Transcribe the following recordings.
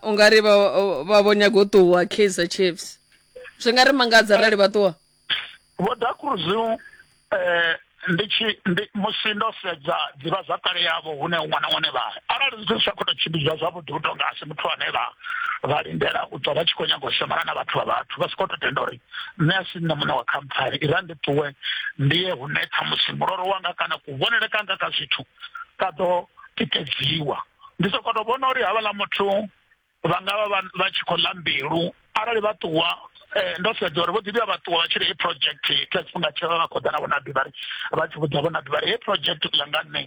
u nga ri vha vha vho nyaga u ṱuwa kaizer chiefs zwi nga ri mangadza arali vha ṱuwa vho da cruz um ndi tshi ndi musi ndo sedza ḓivha zwa kale yavho hune ṅwana ṅwana vha arali zwithu zwi sa khou tou tshimbidzwa zwavhuḓi u tonga asi muthu ane vha vha lindela u ṱwa vha tshi khou nyaga u shomana na vhathu vha vhathu vha si khou tou tenda uri nṋe a si nṋe muṋe wa khamphani i ra ndi ṱuwe ndi ye hune ṱhamusi muloro wanga kana kuvhonele kanga ka zwithu ka ḓo tikedziwa ndi soko to vhona uri havhala muthu vha nga vha vha tshi khou ḽa mbilu arali vha ṱuwa eh, ndo sedza uri vho ḓi vhuya vha ṱuwa vha tshi ri hei project kha tshifhinga tshe vha vha khou ḓa na vhonaḓi vha ri vha tshi vhudza vhonaḓi vha ri hei project ḽa nga nṋe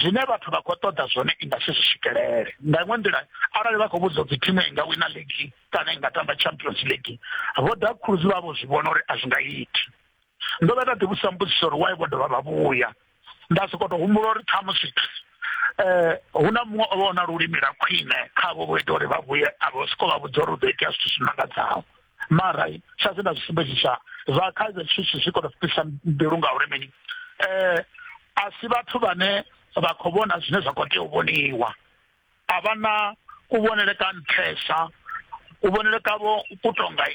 zwine vhathu vha khou ṱoḓa zwone i nga si zwi swikelele nga iṅwe nḓila arali vha khou vhudzwa dzi thimu i nga wina league kana i nga tamba champions league vho ḓa khuluzi vha vho zwi vhona uri a zwi nga iti ndo vha nda ḓi vhusa mbudziso uri why vho dovha vha vhuya nda soko to humbula uri ṱhamusi eh hu na muṅwe o vhona lulimi la khwine kha vho vho ita uri vha vhuye a vho soko vha vhudza uri u ḓo itea zwithu zwi mangadzaho mara sa zwe nda zwi sumbedzisa zwa kha zwe zwithu zwi kona u fhisa mbilu nga uri mini eh a si vhathu vhane vha khou vhona zwine zwa khou tea u vhoniwa a vha na kuvhonele ka nṱhesa kuvhonele kavho ku tonga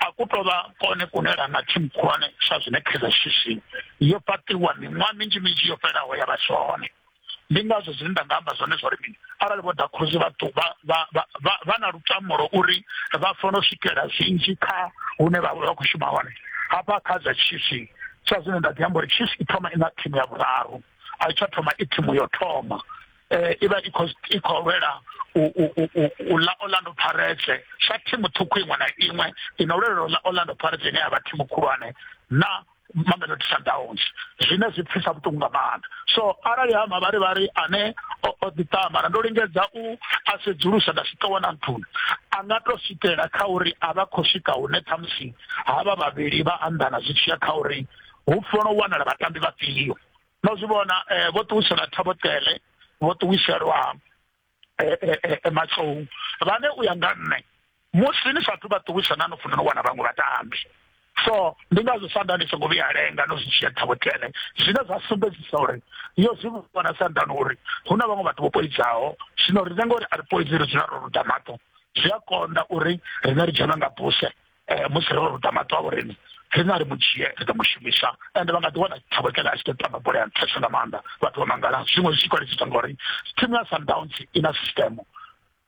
a ku tou vha kone kunela na thimu khulwane sa zwine kaizer chiefs yo fhaṱiwa miṅwaha minzhi minzhi yo fhelaho ya vha si hone ndi ngazwo zwine nda nga amba zwone zwa uri mini arali vho dakhuzi vha na lutamulo uri vha fanela u swikela zwinzhi kha hune vha vha khou shuma hone hafha kha zwa chiefs sa zwine nda ḓi amba uri chiefs i thoma i na thimu ya vhuraru a i tsha thoma i thimu yo thoma eh, i vha i khou i khou lwela u ḽa orlando pirates sa thimu ṱhukhu iṅwe na iṅwe i no lwela u ḽa orlando pirates ine ya vha thimu khulwane na mamelodi sundowns zwine zwi pfisa vhuṱungu nga maanḓa so arali ha mavharivhari ane o ḓiṱamara ndo lingedza u a sedzulusa nda si ṱowa na nthuni a nga to swikela kha uri a vha khou swika hune ṱhamusi ha vha vhavhili vha anḓana zwi tshiya kha uri hu fanela u wanala vhatambi vhafhio no zwi vhona eh, vho ṱuwisela thabotele vho ṱuwiselwa eh, eh, matsou vhane u ya nga nṋe musi ni sathu vha ṱuwisa na no funa no wana vhaṅwe vhatambi so ndi ngazwo sanda ni songo vhuya lenga no zwi dzhia thabotele zwine zwa sumbedzisa uri yo zwi vhona sandani uri hu na vhaṅwe vhathu vho poidzaho zwino rine ngori a ri poidzi ri dzula ro ruda maṱo zwi a konḓa uri rine ri dzhena nga buse eh, musi ro ruta maṱo a vhoreni rine a ri mu dzhie ri ḓo mu shumisa ende vha nga ḓi wana thabokela a tshi ḓo tamba bola ya nṱhesa nga maanḓa vhathu vha mangala zwiṅwe zwi tshi kwalisiswa ngori thimu ya sundowns i na sistemo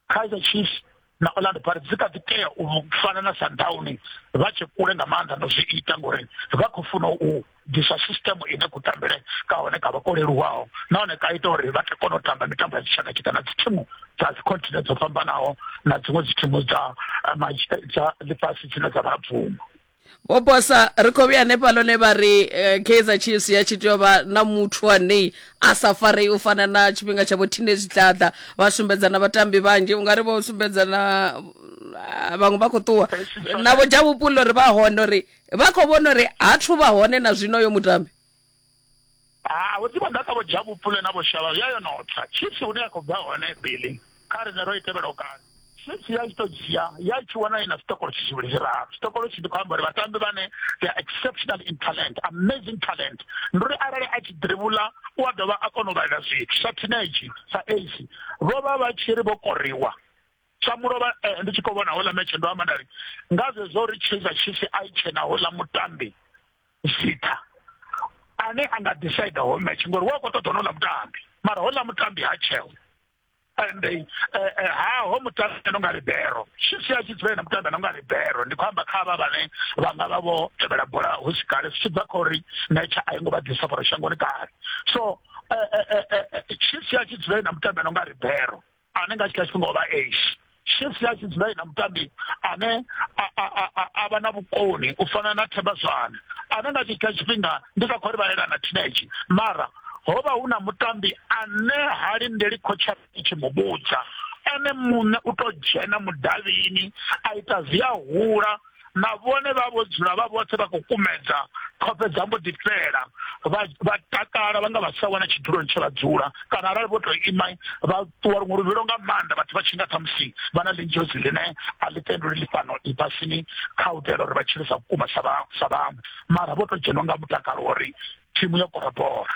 kaizer chiefs na orlando pirates dzi kha ḓi tea u fana na sundown vha tshi kule nga maanḓa no zwi ita ngori vha khou funa u ḓiswa system ine ku tambele ka hone ka vha ko leluwaho nahone ka ita uri vha tea kona u tamba mitambo ya tshitshaka tshika na dzithimu dza dzikhontinent dzo fhambanaho na dziṅwe dzithimu dza eh, dza ḽifhasi dzine dza vha bvumo vho bosa ri khou vhuya hanefha lone vha ri eh, kaizer chiefs ya tshi tea u vha na muthu ane a sa farei u fana na tshifhinga tsha vho tine zwitlhaḓa vha sumbedza na vhatambi vhanzhi u nga ri vho sumbedza na ah, vhaṅwe vha khou ṱuwa navho dzha vhupula uri vha hone uri vha khou vhona uri ha thu vha hone na zwino yo mutambi ha vho ḓivha ḓaka vho dzha vhupule na vho shavha ya yo notsa chiefs hune ya khou bva hone billing kha rine ro i tevhela u kale chiefs ya tshi tou dzhia ya tshi wana ina sitokolo tshi zwivhili zwiraru sitokolo tshi ndi khou amba uri vhatambi vhane they are exceptional in talent amazing talent ndi uri arali a tshi dribula u a dovha a kona u vhalela zwithu sa teenage sa ac vho vha vha tshi ri vho koriwa sa mulovha eh, ndi tshi khou vhona houḽa metshe ndo amba nda ri nga zwezwo ri chisa chisi a i tshena houḽa mutambi zitha ane a nga decide ho metshe ngori wa khou ṱoḓa honouḽa mutambi mara houḽa mutambi ha tsheo ende eh, eh, haho mutambi ano nga libero chisi a tshi dzula na mutambi ano nga libero ndi khou amba kha vha vhane vha nga vha vho tevhela bola hu si kale zwi tshi bva kha uri metshe a i ngo vha ḓisa foro shangoni kale so chisi a tshi dzula na mutambi ano nga libero ane nga tshikha tshifhinga o vha ash shift ya tshi dzula na mutambi ane a vha na vhukoni u fana na themba zwane ane nga tshikha tshifhinga ndi sa khou ri vhalela na teenage mara ho vha hu na mutambi ane ha lindeli khotsha i tshi mu vhudza ene muṋe u tou dzhena mudavhini a ita zwi a hula na vhone vha vho dzula vha vhoṱhe vha khou kumedza khofhe dza mbo ḓi fhela vha takala vha nga vha sa wana tshiduloni tshe vha dzula kana arali vho tou ima vha ṱuwa luṅwe luvhilo nga maanḓa vhathu vha tshi nga ṱhamusi vha na ḽinzhozi ḽine a ḽi tenduli ḽi fhano ḽifhasini kha u itela uri vha tshile sa vhukuma sa vhaṅwe mara vho tou dzhenwa nga mutakalo uri thimu yo korobora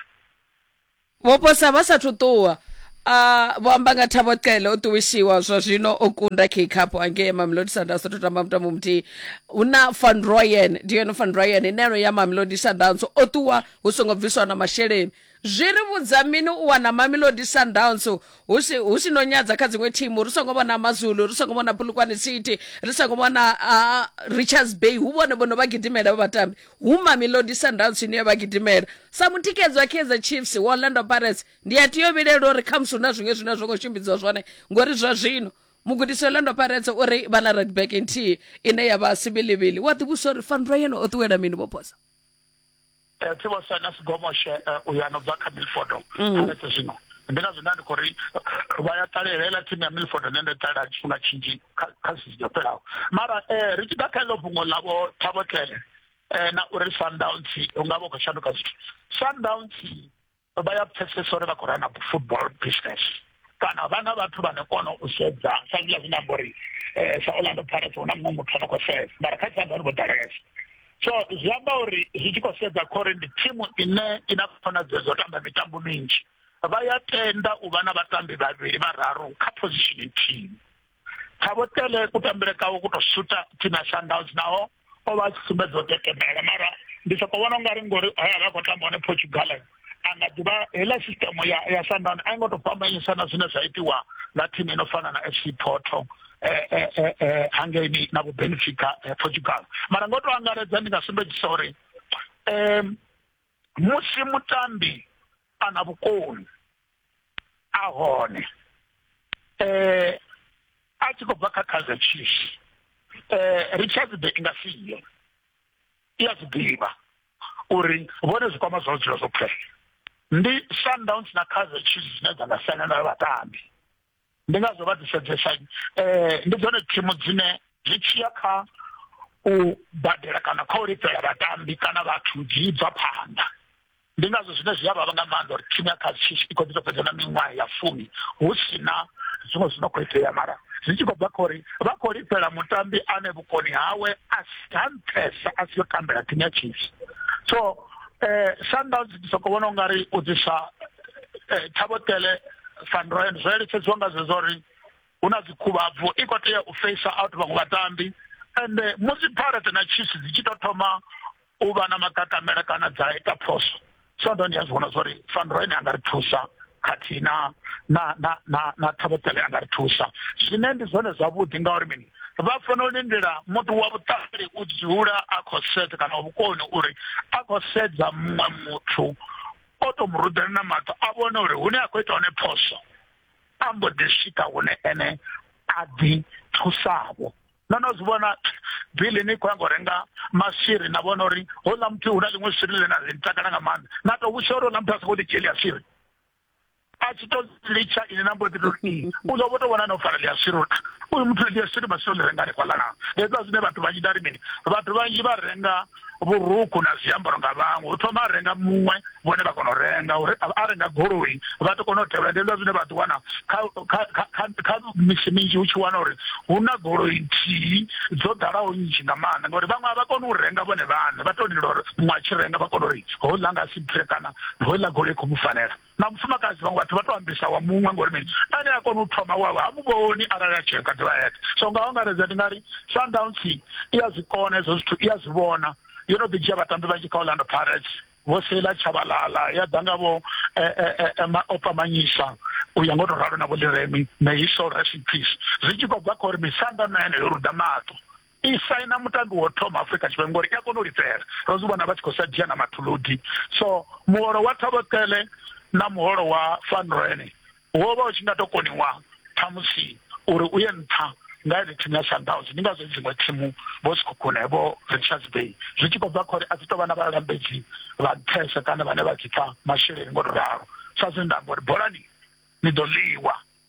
Vho posa vha sa thu ṱuwa. A vho amba nga Thabo Cele o ṱuwishiwa zwa zwino o kunda King Cup hangei Mamelodi Sundowns o tamba mutambo muthihi. Hu na Van Rooyen, Dion Van Rooyen ine ro ya Mamelodi Sundowns o ṱuwa hu songo bviswa na masheleni. Zwi ri vhudza mini u wana Mamelodi Sundowns hu si hu si no nyadza kha dziṅwe thimu ri songo vhona Mazulu, ri songo vhona Polokwane City, ri songo vhona Richards Bay hu vhone vho no vha gidimela vha vhatambi. Hu Mamelodi Sundowns ine ya vha gidimela. Sa mutikedzi wa Kaizer Chiefs, wa Orlando Pirates, ndi a tea u vhilela uri khamusi hu na zwiṅwe zwine a zwo ngo tshimbidzwa zwone ngori zwa zwino mugudisi wa Orlando Pirates u ri vha na right back nthihi ine ya vha Sibilivili. Wa ḓivhudzisa uri Van Rooyen o ṱuwela mini vho posa? Tsibosa na Sigomoshe uyo a no bva kha Milford Pirates zwino. Ndi ngazwo nda ndi khou ri vha ya ṱalela heiḽa thimu ya Milford ine nda ṱalela tshifhinga tshinzhi kha sizini yo fhelaho mara eh, ri tshi ḓa kha iḽo fhungo ḽavho Thabo Tlele eh, na uri Sundowns hu nga vha u khou shanduka zwithu Sundowns vha ya pfesesa uri vha khou rana football business kana vha na vhathu vhane kona u sedza sa zwiḽa zwine amba uri eh, sa Orlando Pirates hu na muṅwe muthu ano khou sedza mara kha Sundowns vho ḓalesa so zwi amba uri zwi tshi khou sedza khore ndi thimu ine i na khonadzeo dzo tamba mitambo minzhi vha ya tenda u vha na vhatambi vhavhili vhararu kha position nthihi khavho tele kutambele kawo ku to suta team ya sundowns naho o vha a tshi sumbedza u tekemela mara ndi soko vhona ungari ngori hoya vha khou tamba hone portugal a nga ḓivha heiḽa system ya ya sandani a i ngo tou fhambanyisa na zwine zwa itiwa na thimu ino fana na fc porto um eh, eh, eh, eh, hangeini na vhubenefika eh, portugal mara ngo tou angaredza ndi nga sumbedzisa uri um musi mutambi a na vhukoni a hone um a tshi khou bva kha kaizer chiefs um richards be i nga siyo i a zwi ḓivha uri vhone zwikwama zwa dzula zwo phela ndi sundowns na kaizer chiefs dzine dza nga sena na vhatambi ndi ngazwo vha ḓisedzesa um eh, ndi dzone thimu dzine zwi tshiya kha u badela kana kha u lifhela vhatambi kana vhathu dzi bva phanḓa Ndi ngazwo zwine zwi a vhavha nga maanḓa uri thimu ya Kaizer Chiefs i khou ḓi tou fhedza na miṅwaha ya fumi hu si na zwiṅwe zwi no khou itea mara zwi tshi khou bva kha uri vha khou lifhela mutambi ane vhukoni hawe a si ha nṱhesa a si yo tambela thimu ya Chiefs so eh Sundowns ndi soko vhona ungari u ḓisa eh, Thabotele Van Rooyen zwo eletshedziwa nga zwezwo uri hu na dzikhuvhabvu i khou tea u face out vhaṅwe vhatambi ende musi Pirates na Chiefs dzi tshi tou thoma u vha na makakamela kana dza ita phoso so ndo ndi a zwi vhona zwa uri faniro ine a nga ri thusa khathihi na na na na na thabotele a nga ri thusa zwine ndi zwone zwavhuḓi ngauri mini vha fanela u lindela muthu wa vhuṱali u dzula a khou sedza kana wa vhukoni uri a khou sedza muṅwe muthu o to mu rudela na maṱo a vhone uri hune a khou ita hone phoso a mbo ḓi swika hune ene a ḓi thusavho no no zwi vhona bili ni khou ya ngo renga maswiri na vhona uri houḽa muthu hu na ḽiṅwe swiri ḽe na ḽi takala nga maanḓa na tou vhusha uri houḽa muthu a sokou ḓi dzhieli ya swiri a tshi to litsha ine na mbo ḓi to ri u ḓo vho to vhona no fara ḽi a swiri uri uyu muthu ḽi a swiri maswiri ḽi renga hanefhaḽa na hezwiḽa zwine vhathu vhanzhi nda ri mini vhathu vhanzhi vha renga vhurukhu na zwiambaro nga vhaṅwe hu thoma a renga muṅwe vhone vha kona u renga uri a renga goloi vha ḓo kona u tevhela ndi hezwa zwine vha ḓi wana kha misi minzhi hu tshi wana uri hu na goloi nthihi dzo ḓalaho nnzhi nga maanḓa ngauri vhaṅwe a vha koni u renga vhone vhaṋe vha tou lindela uri muṅwe a tshi renga vha kona uri houḽa nga si bve kana houḽa goloi khou mu fanela na mufumakadzi vhaṅwe vhathu vha to ambisa wa muṅwe ngori mini ane a kona u thoma wawe ha muvhoni arali a tsheka ḓivha yeṱhe so nga angaredza ndi nga ri sundowns i ya zwi kona hezwo zwithu i ya zwi vhona yo no ḓi dzhia vhatambi vhanzhi kha orlando pirates vho sela tshabalala ya ḓa nga vho eh, eh, eh, maopa manyisa u ya ngo to ralo na vho liremi may his soul rest in peace zwi tshi khou bva kha uri misanda na ene yo ruda maṱo i saina mutambi wo thoma afrika tshipembe ngori i a kona u lifhela ro zwi vhona vha tshi khou sa dzhia na mathuludi so muholo wa thavhokele na muholo wa fanrene wo vha u tshi nga to koniwa ṱhamusi uri u ye nṱha nga ene thimu ya sundowns ndi ngazwo dziṅwe thimu vho sikhukhune vho richards bay zwi tshi khou bva kha uri a dzi tou vha na vhalambedzi vha nṱhesa kana vhane vha dzi pfa masheleni ngo to ralo sa zwine nda amba uri bolani ni ḓo ḽiwa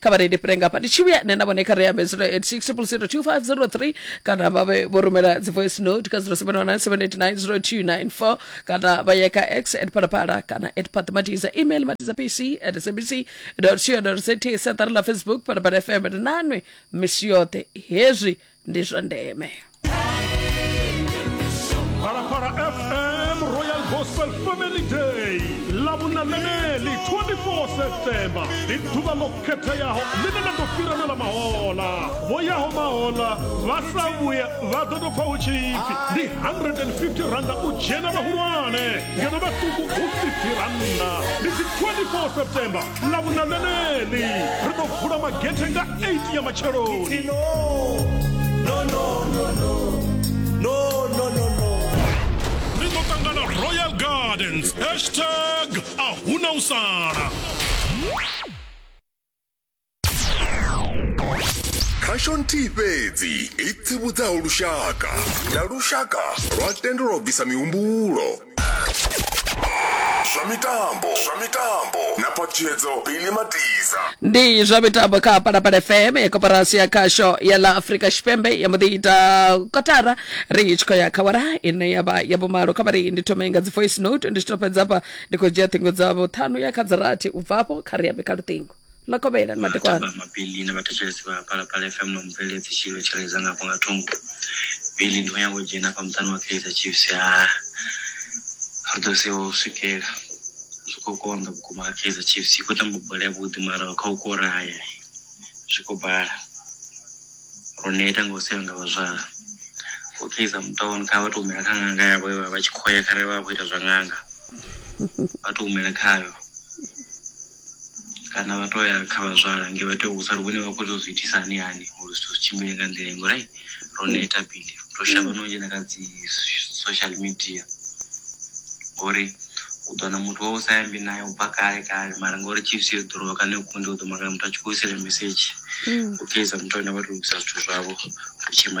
kha vha reile fhire ngafha ndi tshi vhuya nṋe na vhone kha ri ambe 0860025003 kana vha vhe vho rumela dzi voice note kha 0719789024 kana vha ye kha x at phalaphala kana at phathimatiza email matiza pc at sabc co za siaṱari ḽa facebook phalaphala fm ri nanwe misi yoṱhe hezwi ndi zwa ndeme Phalaphala FM Royal Gospel Family Day lavhuna ḽeneḽi 24 septemba ndi ḓuvha ḽo khetheaho ḽine ḽa ḓo fhiranela mahola vho yaho mahola vha sa vhuya vha ḓo tou pfa hu tshi pfi ndi 150 randa u dzhena vhahulwane ngeno vhaṱuku hu 50 randa ndi dzi 24 septemba na vhuna ḽeneḽi ri ḓo vula magethe nga 8 ya matsheloni ri ḓo ṱangana royal gardens hashtag a huna u sala khasho nthihi fhedzi i tsivhudzaho lushaka na lushaka lwa tendelwa u bvisa mihumbulo zwa mitambo zwa mitambo na patshedzo pili matiza ndi zwa mitambo kha palapala fm ya koporasi ya khasho ya la afrika tshipembe ya mbo ḓi ita kotara ri tshi khou ya kha wara ine ya vha ya vhumalo kha vhari ndi thome nga dzi voice note ndi tshi to fhedza hafha ndi khou dzhia ṱhingo dzavho ṱhanu ya kha dza rathi u bva afho kha ri ambe kha luṱingo makovhela na madekwana vhatamba mabili na vhathetshelesi vha phalaphala fm na mubveledzi tshilo tshireledza ngafho nga thungo bili ndi khou nyanga u dzhena fha muṱani wa kaizer chiefs ha ri ḓo sewa u swikela zwi khou konḓa vhukuma kha kaizer chiefs i khou tamba bola yavhuḓi mara kha u koraya zwi khou bala ro neta nga u sewa nga vhazwala u kaizer mutown kha vha tou humela kha ṅanga yavho ye vha vha tshi khoya kharali vha vha khou ita zwa ṅanga vha tou humela khayo kana vha to ya kha vhazwala nge vha tea u sala vhone vha khou tou zwi itisa hani hani uri zwithu zwi tshimbile nga nḓila ngo right ro neta bili ro shavha no dzhena kha dzi social media ngori u ḓo na muthu wa u sa yambi naye u bva kale kale mara ngori chiefs yo ḓorowa kana yo kunde u ḓo makala muthu a tshi khou isela mesedzhi u keiza muthu ane vha to lugisa zwithu zwavho u tshima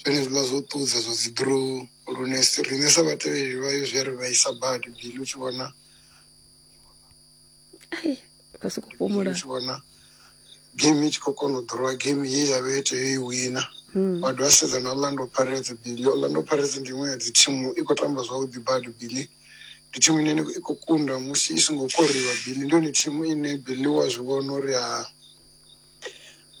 zwenezwiḽa zwo ṱudza zwa dzi drone lune riṋe sa vhatevheli vhayo zwi a ri vhaisa badi bili u tshi vhona vha soko fhumula u tshi vhona game i tshi khou kona u ḓorowa game ye ya vhe tea i wina hmm. wa dovha sedza na orlando pirates bili orlando pirates ndi iṅwe ya dzi thimu i khou tamba zwavhuḓi badi bili ndi thimu ine i khou kunda musi i songo koriwa bili ndi yone thimu ine bili wa zwi vhona uri ha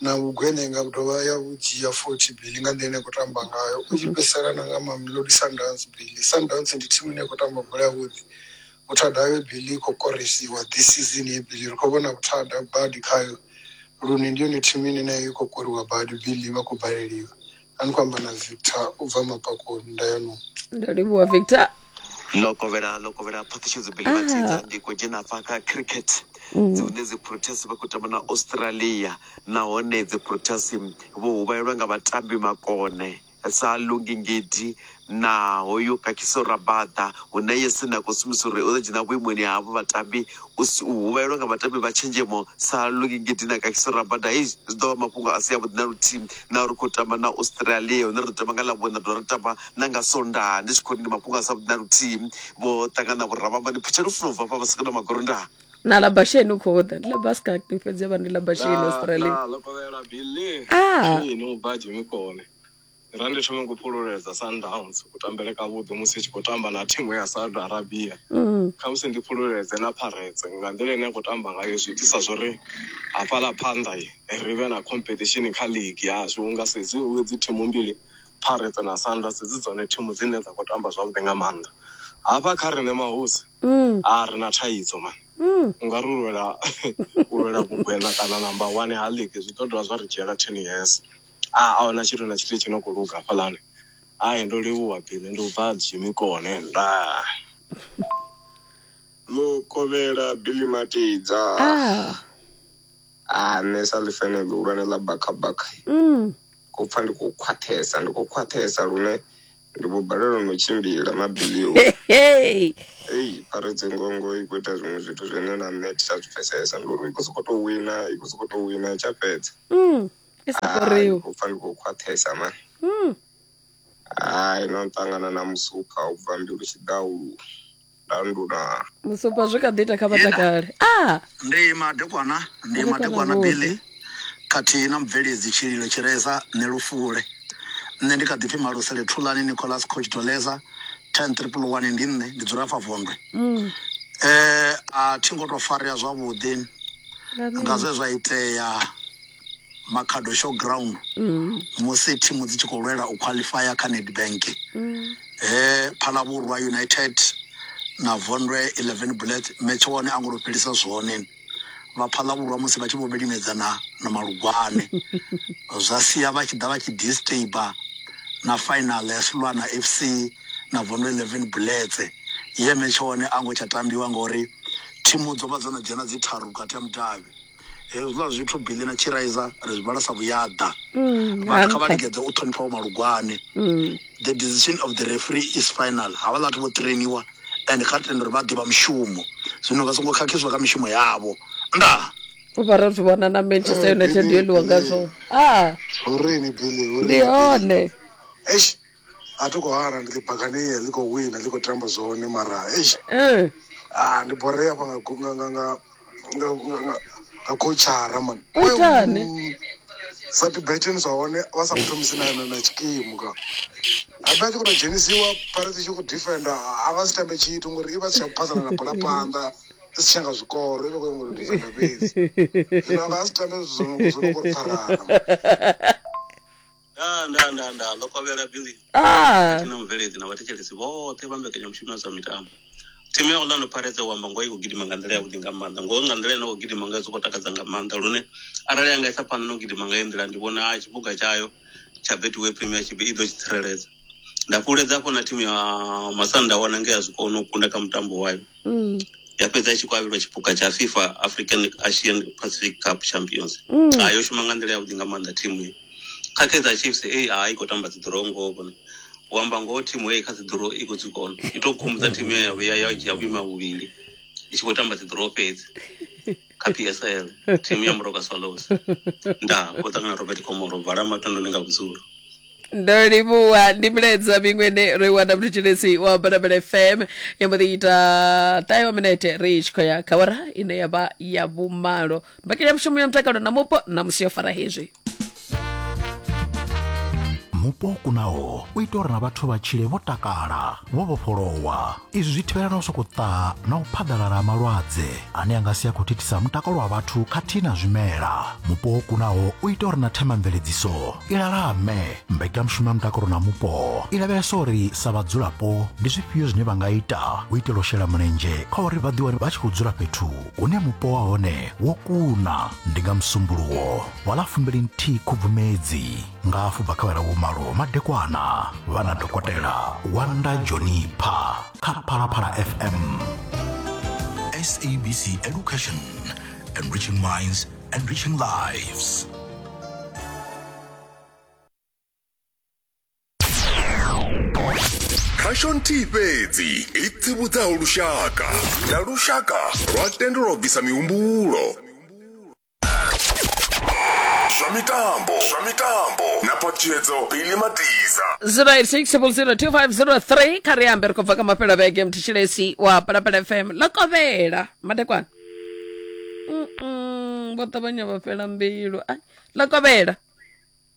na vhugweṋenga vhu dovha ya vhu dzhia futhi Billy nga nḓila ine ya khou tamba ngayo u tshi fhedzisela na nga Mamelodi Sundowns Billy Sundowns ndi thimu ine ya khou tamba bola yavhuḓi vhuthada hayo Billy i khou korisiwa this season ye Billy ri khou vhona vhuthada badi khayo lune ndi yone thimu ine nayo i khou koriwa badi Billy vha khou baleliwa a ni khou amba na victor u bva mapakoni ndayanoni ndo livhuwa victor ḽo kovhela ḽo kovhela phaṱhishedzo bele vhatidza ndi khou dzhena afha kha cricket dzi hune dzi proteas vha khou tamba na australia nahone dzi proteas vho huvhalelwa nga vhatambi makone sa lungi ngidi na hoyu kakiso Rabada hune Yese na khou sumbisa uri o ḓo dzhena vhuimoni havho vhatambi u huvhalelwa nga vhatambi vha tshenzhemo sa Luki Ngidi na kakiso Rabada hei zwi ḓo vha mafhungo a si avhuḓi na luthihi na uri khou tamba na Australia hune ri ḓo tamba nga ḽavhuṋa ra dovha ra tamba na nga Sondaha ndi tshi khou ri ndi mafhungo a si avhuḓi na luthihi vho ṱangana vho rabamba ni phutshela u funa u bva fha vha sika na magorondaha na la basheni u khou ḓa ndi la baska fhedzi vha ndi la basheni Australia ah Ra ndi thome ku fhululedza Sundowns ku tambele ka vhuḓi musi i tshi khou tamba na thimu ya Saudi Arabia. Mm. Kha musi ndi fhululedze na Pirates nga nḓila ine ya khou tamba ngayo zwi itisa zwori hafhaḽa phanḓa ri vhe na competition kha league yashu unga sedzi dzi thimu mbili Pirates na Sundowns dzi dzone thimu dzine dza khou tamba zwavhuḓi nga maanḓa. Hafha kha riṋe mahosi mm. a ri na thaidzo mani. Mm. U nga ri lwela u lwela vhugwena kana number 1 ha league zwi ḓo dovha zwa ri dzhiela 10 years. Ah, a huna tshithu na tshithu tshi no khou luga hafhaḽani hai ndo livhuwa bini ndi u bva dzimikone nda mukovhela billy matidza ah ah nṋe sa ḽifene ḽihulwane ḽa bakhabakha mm. khou pfa ndi khou khwaṱhesa ndi khou khwaṱhesa lune ndi vho balelwa no tshimbila mabilio hey ei pharedze ngongo i khou ita zwiṅwe zwithu zwine na nṋe thi tsha zwi pfesesa ndi uri i khou sokou tou wina i khou sokou tou wina i tsha fhedza mm. i sa fariwi khou pfa ndi khou khwaṱhesa mani hmm. hai no ṱangana na musupa u bva mbilu tshidaulu landuna musupa zwi kha ḓi ita kha vhatakale ah! ndi madekwana ndi madekwana billy khathihi na mubveledzi tshililo tshireza nṋe lufule nṋe ndi kha ḓi pfi malusele thulani nicolas coach doleza ten triple one ndi nṋe ndi dzula fa vondwe mm. eh a thi ngo to farea zwavhuḓi nga zwe zwa itea Makhado Showground mm. musi thimu dzi tshi khou lwela u qualifya kha Nedbank mm. he Phalabhurwa United na Vondwe 11 Bullets metshe wone a ngo to fhelisa zwone vha Phalabhurwa musi vha tshi vho vhilimedzana na Malugwane zwa sia vha tshi ḓa vha tshi disturber na final ya Sulwana FC na Vondwe 11 Bullets ye metshe wone a ngo tsha tambiwa ngori thimu dzo vha dzo no dzhena dzi tharu vhukati ha mudavhi hezwiḽa zwithu billy na chiraiza ri zwi vhala sa vhuyaḓa vhathu kha vha lingedze u ṱhonifha vho malugwane the decision of the referee is final havha vhathu vho trainiwa and kha ri tende uri vha ḓivha mushumo zwino vha songo khakhiswa kha mishumo yavho ndaa u vha ro zwi vhona na manchester united yo ḽiwa ngazwo a Horini Billy, ndi horini. hone Eish, A thi khou hana ndi ḓi baganiya ḽi khou wina ḽi khou tamba zwone mara eish Eh, ah ndi borea hafha nga gu- nga nga nga nga nga- nga- nga khotshara man U itani? sa tibeteni zwa hone vha sa muthomisi na na na tshikimu ka habe a tshi khou tou dzhenisiwa phare tshi tshi khou defenda a vha si tambe tshithu ngori i vha si tsha phasana na bola phanḓa i si tsha nga zwikoro i vha khou nyanga u defenda fhedzi zwino a vha a si tambe zwithu zwo no- zwo no khou ri pfarana nda nda nda nda ḽo kovhela billy ah na mubveledzi na vhathetshelesi vhoṱhe vha mbekanyamushumo ya zwa mitambo thimu ya orlando pirates u amba ngoho i khou gidima nga nḓila yavhuḓi nga maanḓa ngoho nga nḓila ine khou gidima ngayo zwi khou takadza nga maanḓa lune arali ya nga isa phanḓa na u gidima nga iyo nḓila ndi vhona tshiphuga tshayo tsha betway premiership i ḓo tshi tsireledza nda fhulufhedza hafho na thimu ya masanda wana nge ya zwi kona u kunda kha mutambo wayo Mm. ya fhedza i tshi khou avhelwa tshipuka tsha fifa african asian pacific cup champions Mm. Ah, yo shuma nga nḓila yavhuḓi nga maanḓa thimu iyi kha kaizer chiefs ei a i khou tamba dziḓuro ngoho kona u amba ngoho thimu ei kha dziḓuro i khou dzi kona i tou khumbudza thimu ya ya ya dzhia vhuima vhuvhili i tshi khou tamba dziḓuro fhedzi kha psl thimu ya muroka swallows ndaa vho ṱangana robert komoro vala matondoni nga vhudzulo ndo livhuwa ndi milaedza miṅwe ne ro i wana mthetshelesi wa barabela fm ya mbo ḓi ita ṱahe wa minete ri tshi khou ya kha wara ine ya vha ya vhumalo mbekanya mushumo ya mutakalo na mupo na musi yo fara hezwi mupo o kunaho u ita uri na vhathu vha tshile vho takala vho vhofholowa izwi zwi thivhela na u sokou ṱaha na u phaḓalala ha malwadze ane a nga si a khou thithisa mutakalo wa vhathu khathihi na zwimela mupo o kunaho u ita uri na themamveledziso i lalame mbekanyamushumo ya mutakalo na mupo i lavhelesa uri sa vhadzulapo ndi zwifhio zwine vha nga ita u itela u shela mulenzhe kha uri vha ḓiwane vha tshi khou dzula fhethu hune mupo wa hone wo kuna ndi nga musumbuluwo vha ḽa fumbili nthihi khubvumedzi nga afho bva kha vhalawo malo madekwana vha na dokotela wanda jonipha kha phalaphala fm sabc education enriching minds enriching lives khasho nthihi fhedzi i tsivhudzaho lushaka na lushaka lwa tendelwa u bvisa mihumbulo zwa mitambo zwa mitambo na phaṱhutshedzo bili matiza 086002503 kha ri ambe ri khou bva kha mafhelo a vhege mthitshilesi wa palapala fm ḽo kovhela madekwana Mm-mm, vho ṱavhanya vha fhela mbilu Ai, ḽo kovhela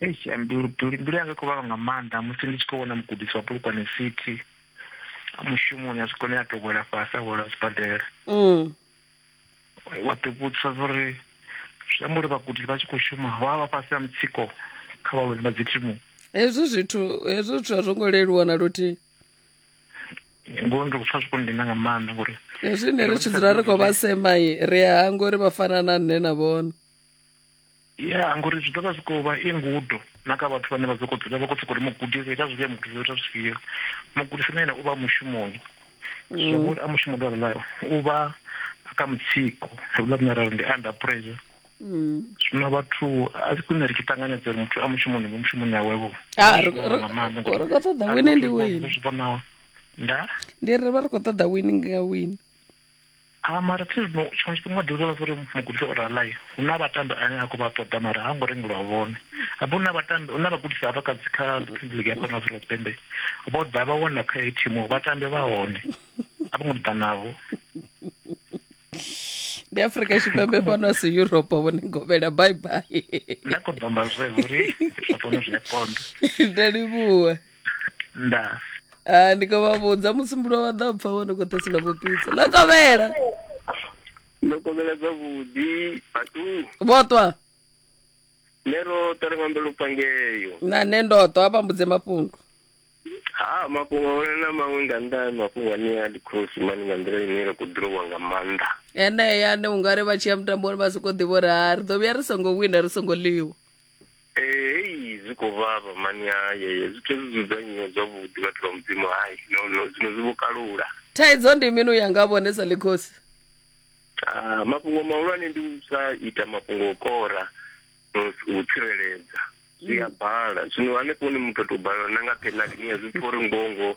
eish mbilu mbilu yanga kuvava nga maanḓa musi ndi tshi khou vhona mugudisi wa polokwane city mushumoni a zwikone a to wela fhasi a wela sibadela mm. wa ḓivhudzisa zwauri zwi amba uri vhagudisi vha tshi khou shuma vha vha fhasi ha mutsiko kha vhalwadzi vha dzithimu hezwi zwithu hezwi zwithu a zwo ngo leluwa na luthihi ngo ndi kupfa zwi kundina nga maanḓa ngori hezwi ne ri tshi dzula ri khou vha semai ri a hanga uri vha fana na nṋe na vhona Ya, ngori zwi ḓo vha zwi khou vha i ngudo na kha vhathu vhane vha sokou dzula vha khou sokou ri mugudisi ita zwifhio mugudisi ita zwifhio mugudisi na ene u vha mushumoni zwa vhori a mushumo lwa rula u vha kha mutsiko rula rine ra ri ndi under pressure zwino vhathu a si khwine ri tshi ṱanganedza uri muthu a mushumoni mu mushumoni awevho Ah, ri- ri- nga maanḓa ngori ri khou ṱoḓa a wine ndi ri khou wine. zwi vhonaho nda ndi ri vha ri khou ṱoḓa wini nga wini A mara thi zwino tshiṅwe tshifhinga u ḓi vhudza vhathu uri mugudisi o rala hu na vhatambi ane a khou vha ṱoḓa mara ha ngo rengelwa vhone habe hu na vhatambi hu na vhagudisi havha kha kha premier league ya fhano afrika tshipembe vho ḓa vha wana kha heyi thimu vhatambi vha hone a vho ngo ḓa navho ndi afrika tshipembe fhano a si europe vhone govhela bye bye nda khou ḓomba zwe uri zwa fhano zwi a konda nda livhuwa nda Ah, ndi khou vha vhudza musumbulo wa ḓa pfa wone khou ṱhasula vhupitsa ḽa kovhela ndo kovhela zwavhuḓi batu vhoṱwa ne ro ṱarenga mbelo pangeyo na nṋe ndoṱwa a vhambudze mafhungo ha mafhungo one na maṅwe nga nnḓa ha mafhungo ane a ndi khosi mani nga nḓila ine ra khou ḓirowa nga maanḓa enea ane ungari vha tshi ya mutamboni vha sokou ḓivha uri ha ri ḓo vhuya ri songo wina ri songo ḽiwa Eh, hei zwi khou vhavha mani haye zwithu hezwi dzudzanyiwa zwavhuḓi vhathu vha mudzimu hai no no zwino zwi vho kalula thaidzo ndi mini u ya nga vhone sa ḽikhosi Ah, mafhungo mahulwane ndi u sa ita mafhungo o kora no s- u tsireledza zwi a bala zwino hanefho ni muthu a tou balelwa na nga penalty ni a zwi pfha uri ngoho ngoho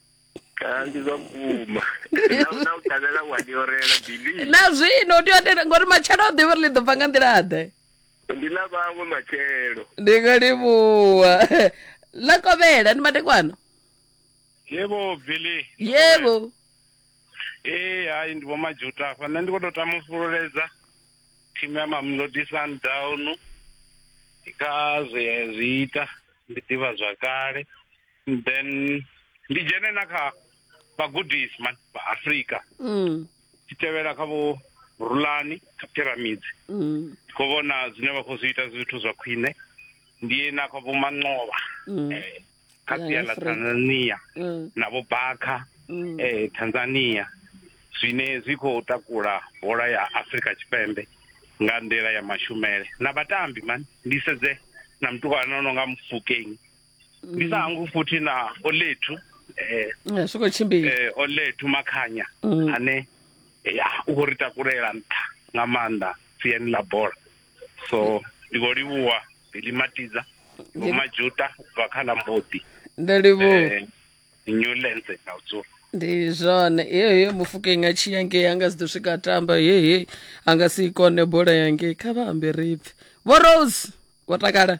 Ah, ndi zwa vhukuma Na- na u ṱalela wa ndi orela bili na zwino u tea u tenda ngori matshelo u ḓivha uri ḽi ḓo bva nga nḓila-ḓe ndi na vhawe matshelo ndi nga livhuwa ḽa kovhela ndi madekwana yebo billy yebo ee hayi ndi vhomajuta afha nṋe ndi khou tou tama u fhululedza thimu ya mamlodi sundown kha zwe ya zwi ita ndi ḓivha zwakale then ndi dzhene na kha vhagudisi man vha afrika Mm. tshi tevhela kha vho rulani kha pyramids Mm. ndi khou vhona zwine vha khou zwi ita zwithu zwa khwine ndi ye na kha vho manqovha Mm. eh, kha Ya, sia ḽa Afrika. tanzania Mm. na vho bakha Mm. eh, tanzania zwine zwi khou takula bola ya afrika tshipembe nga nḓila ya mashumele na vhatambi man ndi sedze na mutukana no nga mufukeng ndi sa hangwi futhi na olethu eh, Eh, zwi khou tshimbila eh, olethu makhanya Mm. ane ya u khou ri takulela nṱha nga maanḓa siani ḽa bola so ndi khou livhuwa bili matiza vho majuta u bva kha ḽa mboḓi ndo livhuwa eh, new lense na u dzula ndi zwone hehe mufukeng a tshi yange anga si ḓo swika a tamba hehe a nga si i kone bola yange kha vha ambe ripfi vho rose wo takala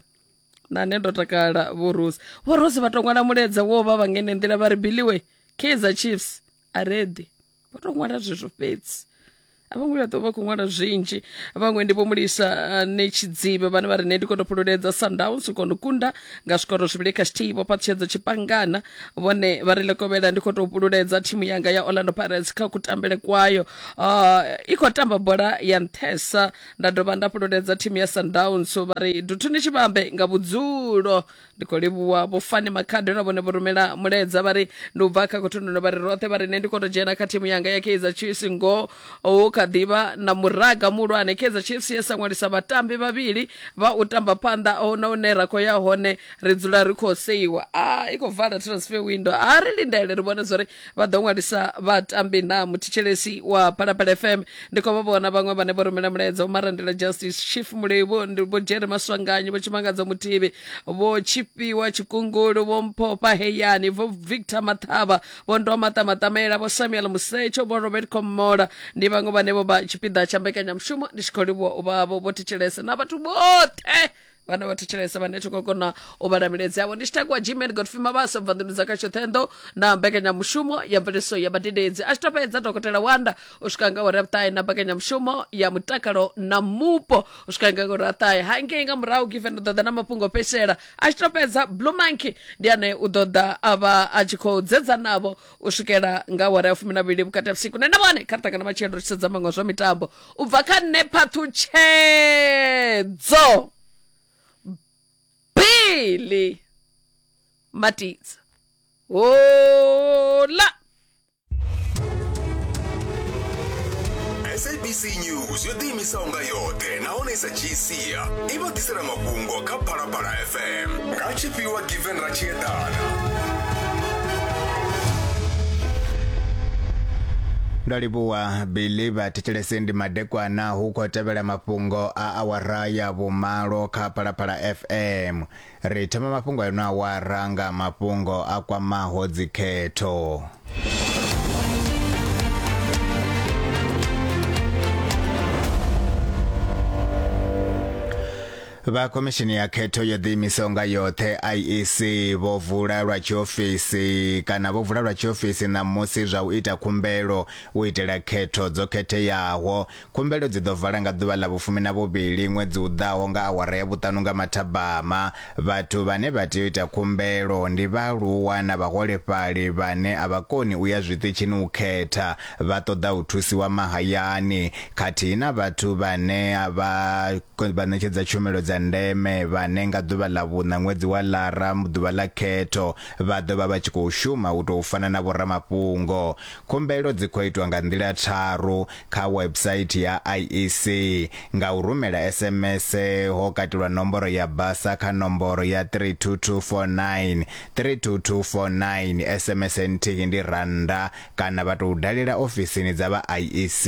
na nṋe ndo takala vhorosi vhorosi vha to ṅwala muledza wo vha vha ngene nḓila vha ri biliwe kaizer chiefs a reḓi vho to ṅwala zwezwo fhedzi a vho ngo vhuya ḓo vha khou ṅwala zwinzhi vhaṅwe ndi vho mulisa eh, ne tshidzibe vhane vha ri ne ndi kono fhululedza sundowns u kono kunda nga zwikoro zwivhili kha tshithihi vho fhaṱutshedza tshipangana vhone vha ri lekovhela ndi khou tou fhululedza thimu yanga ya orlando pirates kha kutambele kwayo Ah, i khou tamba bola ya nṱhesa nda dovha nda fhululedza thimu ya sundowns vha ri duthuni tshivhambe nga vhudzulo ndi khou livhuwa vho fani makhado na vhone vho rumela muledza vha ri ndi u bva kha khothunduno vha ri roṱhe vha ri nṋe ndi khou tou dzhena kha thimu yanga ya kaizer chiefs ngoho hu kha ḓivha na muraga muhulwane kaizer chiefs ye sa ṅwalisa vhatambi vhavhili vha u tamba phanḓa ho na hune ra khou ya hone ri dzula ri khou seiwa a i khou vala transfer window a ri lindele ri vhone zwa uri vha ḓo ṅwalisa vhatambi na muthetshelesi wa phalaphala fm ndi khou vha vhona vhaṅwe vhane vho rumela mulaedza vho marandela justice chief mulevho ndi vho jere maswanganyi vho tshimangadzo muthivi vho tshifhiwa tshikungulu vho mphofha heyani vho victor maṱhavha vho ndoa maṱa maṱamela vho samuel musetsho vho robert komola ndi vhaṅwe vhane vho vha tshipiḓa tsha mbekanyamushumo ndi tshi khou livhuwa u vhavho vho thetshelese na vhathu vhoṱhe vhana vha thetshelesa vhane thi khou kona u vhala miledzi yavho ndi tshi takuwa gmail godfrey mabasa bva nḓuni dza kha tshoṱhenḓo na mbekanyamushumo ya mveledziso ya vhadededzi a tshi to fhedza dokotela wanda u swika nga uri ya vhuṱahe na mbekanyamushumo ya mutakalo na mupo u swika nga uri aṱahe hangei nga murahu given u ḓoḓa na mafhungo o fhedzisela a tshi to fhedza blue monkey ndi ane u ḓoḓa a vha a tshi khou dzedza navho u swikela nga awara ya fumi na vhili vhukati ha vhusiku nṋe na vhone kha ri ṱangana matshelo ri tshi sedza maṅwe a zwa mitambo u bva kha nṋe phaṱhutshedzo bili matidza hola sabc news yo ḓiimisaho nga yoṱhe nahone i sa dzhii sia i vha ḓisela mafhungo kha phalaphala fm nga tshifhiwa given ra tshi eḓana ndo livhuwa billy vhathetshelesi ndi madekwana hu khou tevhela mafhungo a awara ya vhumalo kha phalaphala fm ri thoma mafhungo a ino awara nga mafhungo a kwamaho dzikhetho Vha Khomishini ya Khetho yo ḓiimisaho nga yoṱhe IEC vho vula lwa tshiofisi kana vho vula lwa tshiofisi ṋamusi zwa u ita khumbelo u itela khetho dzo khetheaho. Khumbelo dzi ḓo vala nga ḓuvha ḽa vhufumi na vhuvhili ṅwedzi u ḓaho nga awara ya vhuṱanu nga mathabama. Vhathu vhane vha tea u ita khumbelo ndi vhaaluwa na vhaholefhali vhane a vha koni u ya zwiṱitshini u khetha. vha ṱoḓa u thusiwa mahayani khathihi na vhathu vhane vha vha ṋetshedza tshumelo dza ndeme vhane nga ḓuvha ḽa vhuṋa ṅwedzi wa lara ḓuvha ḽa khetho vha ḓo vha vha tshi khou shuma u tou fana na vhoramafhungo khumbelo dzi khou itwa nga nḓila tharu kha website ya IEC nga u rumela SMS ho katelwa nomboro ya basa kha nomboro ya 32249 32249 SMS nthihi ndi rannda kana vha tou dalela ofisini dza vha IEC.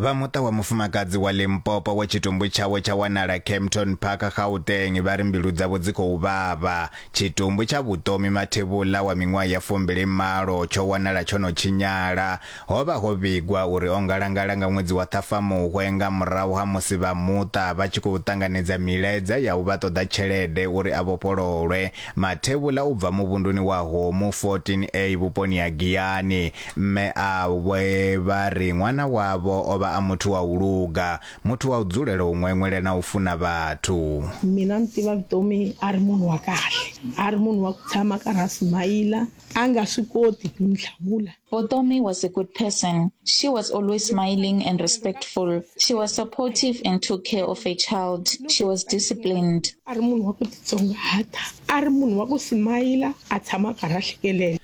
vha muṱa wa mufumakadzi wa limpopo wa tshitumbu tshawe tsha wanala campton park gauteng vha ri mbilu dzavho dzi khou vhavha tshitumbu tsha vhutomi mathevhula wa miṅwaha ya fumbili malo tsho wanala tsho no tshinyala Ho vha ho vhigwa uri o ngalangala nga ṅwedzi wa Ṱhafamuhwe nga murahu ha musi vha muṱa vha tshi khou ṱanganedza milaedza ya u vha ṱoḓa tshelede uri a vhofhololwe mathevhula u bva muvhunduni wa Homu 14A vhuponi ha Giyani. Mme awe vha ri ṅwana wavho o vha a muthu wa u luga, muthu wa u dzulela u ṅweṅwela na u funa vhathu. Mina ni tiva Vutomi a ri munhu wa kahle, a ri munhu wa ku tshama a karhi a smiler, a nga swi koti ku ni hlamula. Botomi was a good person. She was always smiling and respectful. She was supportive and took care of her child. She was disciplined. a ri munhu wa ku titsongahata a ri munhu wa ku simayila a tshama a karhi a hlekelela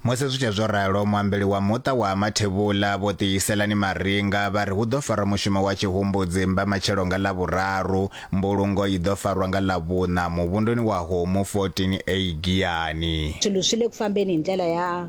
musi zwi tshe zwo ralo muambeli wa muṱa wa mathevhula vho ṱihiselani maringa vha ri hu ḓo farwa mushumo wa tshihumbudzi mba matshelo nga ḽavhuraru mbulungo i ḓo farwa nga ḽavhuṋa muvhunduni wa homu 14 a giyani swi le ku fambeni hi ndlela ya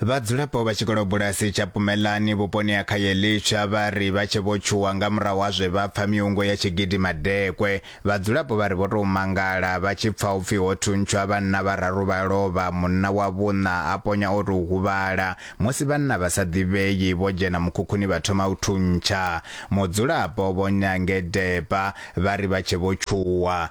Vhadzulapo vha tshikolobulasi tsha Pumelani vhuponi ha Khayelitsha vha ri vha tshe vho tshuwa nga murahu ha zwe vha pfa miungo ya tshi gidima dekwe. Vhadzulapo vha ri vho tou mangala vha tshi pfa upfi ho thuntshwa vhanna vhararu vha lovha, munna wa vhuṋa a ponya o tou huvhala. Musi vhanna vha sa ḓivhei vho dzhena mukhukhuni vha thoma u thuntsha. Mudzulapo Vho Nyange Depa vha ri vha tshe vho tshuwa.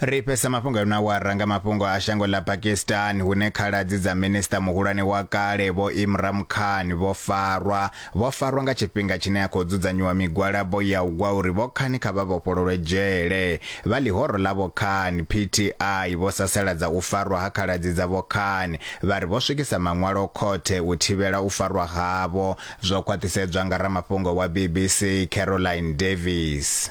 ri fhesa mafhungo a na wara nga mafhungo a shango ḽa pakistan hune khaladzi dza minista muhulwane wa kale vho imram khan vho farwa vho farwa nga tshifhinga tshine a khou dzudzanyiwa migwalabo ya u gwa uri vho khani kha vha vhofhololwe dzhele vha ḽihoro ḽa vho khan pti vho sasaladza u farwa ha khaladzi dza vho khan vha ri vho swikisa maṅwalo khothe u thivhela u farwa havho zwo khwaṱhisedzwa nga ramafhungo wa bbc caroline davis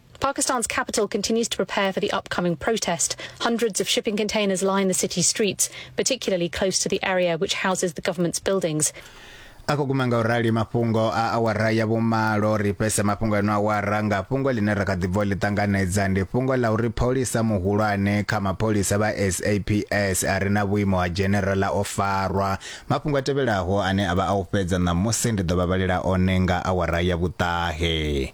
Pakistan's capital continues to prepare for the upcoming protest. Hundreds of shipping containers line the city streets, particularly close to the area which houses the government's buildings. ako guma nga u rali mafhungo a awara ya vhumalo ri fhese mafhungo eno awara nga fhungo ḽine ra kha ḓi bvo ḽi ṱanganedza ndi fhungo ḽa uri pholisa muhulwane kha mapholisa vha saps a re na vhuimo ha generala o farwa mafhungo a tevhelaho ane a vha a u fhedza ṋamusi ndi ḓo vha vhalela one nga awara ya vhuṱahe